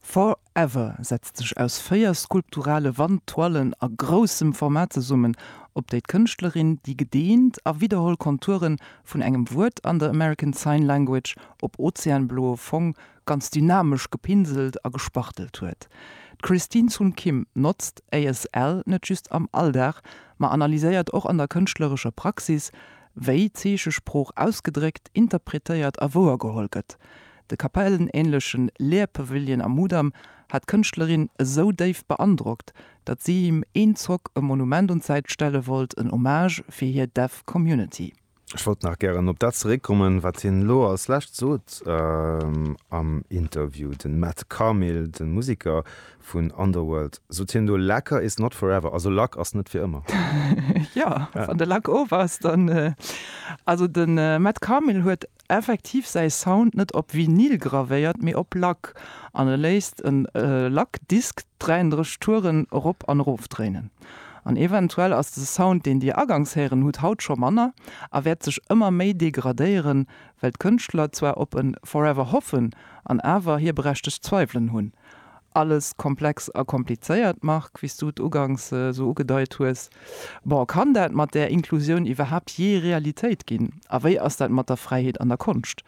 For Ever setzt sech aus véier skulpturale Wandtoilen a groussem Format zesummen, op déi d'Kënschtlerin déi gedeent a widderholl Konture vun engem Wuert an der American Sign Language op ozeanbloe Fong ganz dynamesch gepinselt a gespachtelt huet. D'Christine Sun Kim notzt ASL net just am Alldag, ma analyséiert och an der kënschtlerescher Praxis, wéi Zeechesprooch ausgedréckt, interpretéiert a wouergeholl gëtt. De kapellenänlechen Lehrpavillon am Mudam hat d'Kënschtlerin esou déif beandrockt, datt si him een Zock e Monument un d'Säit stelle wollt, en Hommage fir hir Deaf Community. Ech wollt nach gären op dat zeréckkommen, wat hien elo als Lescht sot am Interview. De Matt Carmill, de Museker vun Underworld, sot hien do, Lacquer is not forever, also Lack ass net fir ëmmer. Jo, wann de Lack of ass, dann. Also de Matt Carmill huet effektiv säi Sound net op Vinyl gravéiert, mee op Lack, an e léisst e Lackdisk 33 Touren erop an erof dréinen. An eventuell ass de Sound, deen Dir agangs héieren hutt, haut scho manner a wäert sech ëmmer méi degradéieren, well d'Kënschtler zwar op e Forever hoffen an awer hir berechtegt Zweiwelen hunn, Alles komplex a komplizéiert, Marc, wéi s du et uganks esou ugedeit hues. Bon, kann dat mat där Inklusioun iwwerhaapt jee Realitéit ginn? A wéi ass dat mat der Fräiheet an der Konscht?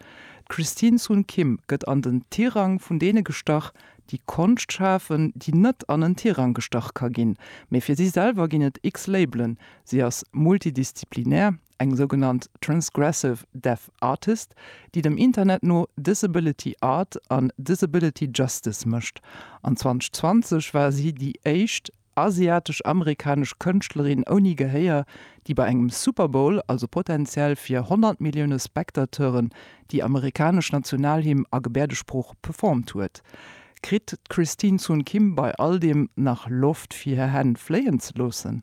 D'Christine Sun Kim gëtt an den Tirang vun deene gestach, déi Konscht schafen, déi net an en Tirang gestach ka ginn. Mee fir si selwer ginn et x-Labelen, si ass multidisziplinär. eng sougenannt Transgressive Deaf Artist, déi dem Internet no Disability Art an Disability Justice mécht, an 2020 war si déi éischt asiatesch-amerikanesch Kënschtlerin ouni Gehéier, déi bei engem Super Bowl, also potenziell fir 100 Millioune Spectateuren, déi amerikanesch Nationalhymn a Gebäerdesprooch performt huet. Kritt d'Christine Sun Kim bei all deem nach Loft fir hir Hänn fléien ze loossen?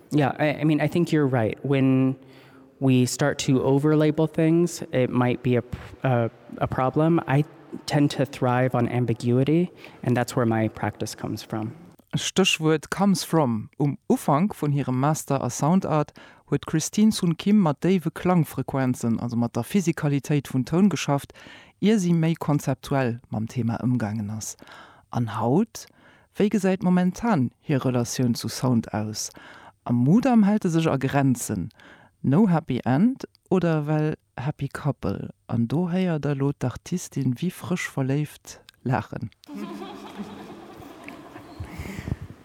Yeah, I, I mean, I think you're right. When we start to over label things, it might be a, a, a problem. I tend to thrive on ambiguity, and that's where my practice comes from. Stéchwuert comes from. Um Ufank vun hirem Master a Sound Art huet d'Christine Sun Kim mat déiwe Klangfrequenzen, also mat der Physikalitéit vun Toun geschafft, ier si méi konzeptuell mam Thema ëmgaangen ass. An haut Wéi gesäit momentan hir Relatioun zu Sound aus? Am Mudam hält e sech a Grenzen, no happy end oder well happy couple? An do héiert der elo d'Artistin wéi frësch verléift laachen.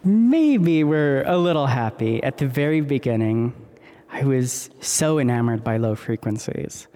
Maybe we're a little happy at the very beginning, I was so enamored by low frequencies.